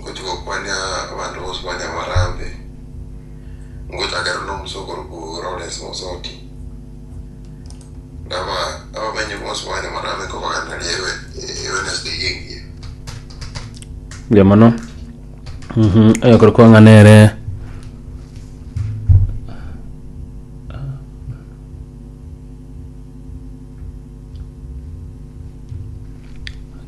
Ngochia gokwania abanto bonsi ba Nyamarambe, ngochake aro na omosia okorokwa Lawrence Mosoti. Abamenyi bonsi ba Nyamarambe nkobaganereria Wednesday eye engiya. Mbuya mono Mhm, oyokorokwa ng'a nere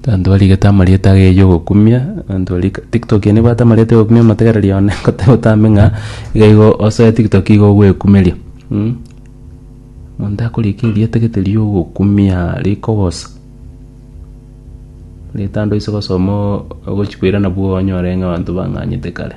Abanto barigete amarieta age ya ogokumia, abanto baria tiktok eye nebwate amarieta ya ogokumia motegereri one goteba otambe ng'a iga igo osoe tiktok igo ogwekumeria. Omonto akorika erieta gete ria ogokumia rikogosa, rieta ande oise gosoma ogochikoira nabwo onyore ng'a abanto bang'anyete kare.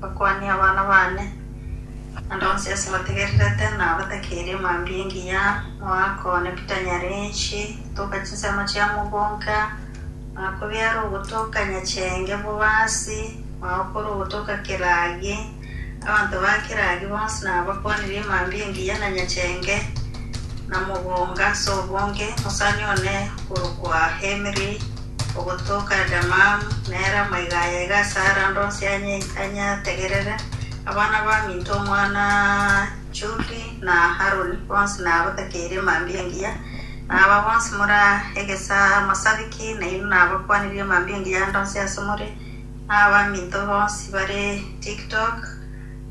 Bakwanie abana baane, naende onsi ase bategererete na batakeria mambia engiya, moaka one bitanyare inche, gotoka chinsemo chia mogonka, moaka obiare ogotoka nyachenge bobasi, moaka ore ogotoka keragi. Abanto ba keragi bonsi nabakwanirie mambia engiya na nyachenge, na mogonga ase obonge, mosani one okorokwa Hemiri. Ogotoka Adamamu, nere amaiga aya iga ase Arando onsi anyategerere, Abana baminto omwana Juri na Haroni bonsi nabatakeirie mambia engiya, na aba bonsi more amasabiki nainwe nabakwanirie mambia engiya ande onsi ase more, na abaminto bonsi bare Tiktok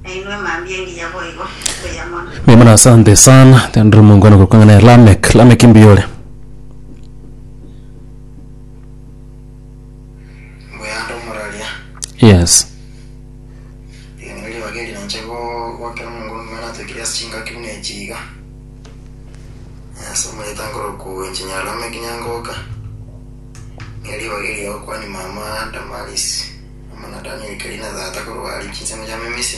nainwe mambia engiya boigo. Mbuya mono. Mbuya mono asante sana tendire omongwana korokwa ng'a nere lamek lamek mbuya ore Mbuyaande omoraria. Yes. Ring'ana ribaga eri nanche go- goakera omonguru ngima natoikire ase chingaki buna echi iga. Ase omanyete nkoroku inche Nyarame Kinyangoka. Ng'eri ribaga eri ogokwania mama Damaris, omwana Daniel Kerina tata korwa Richi inse mochame Misi.